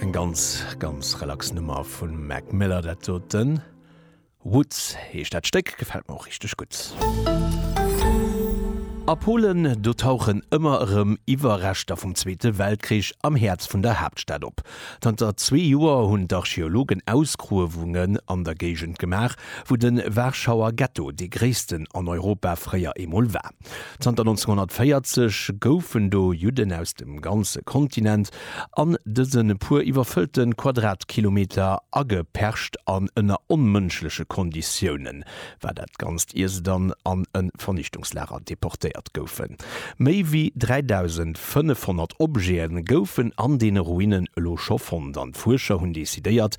Eng ganz, ganz relax Nummer vum Mac Miller dat doten. Woods heescht dat Stéck, gefält mer och richteg gutt. A Polen, do tauchen ëmmer erëm Iwwerreschter vum Zweete Weltkrich am Häerz vun der Haaptstad op. Zanter zwee Joer hunn d'Archeologen Ausgruewungen an der Géigend gemaach, wou de Warschauer Ghetto dee gréissten an Europa fréier eemol war. Zanter 1940 goufen do Judden aus dem ganze Kontinent an dëse puer iwwerfëllte Quadratkilometer agepercht an ënner onmënschleche Konditioune war dat ganzt ier se dann an e Vernichtungslager deportéiert goufen. Méi wéi 3.500 Objete goufen an deene Ruinen elo scho fonnt an d'Fuerscher hunn decidéiert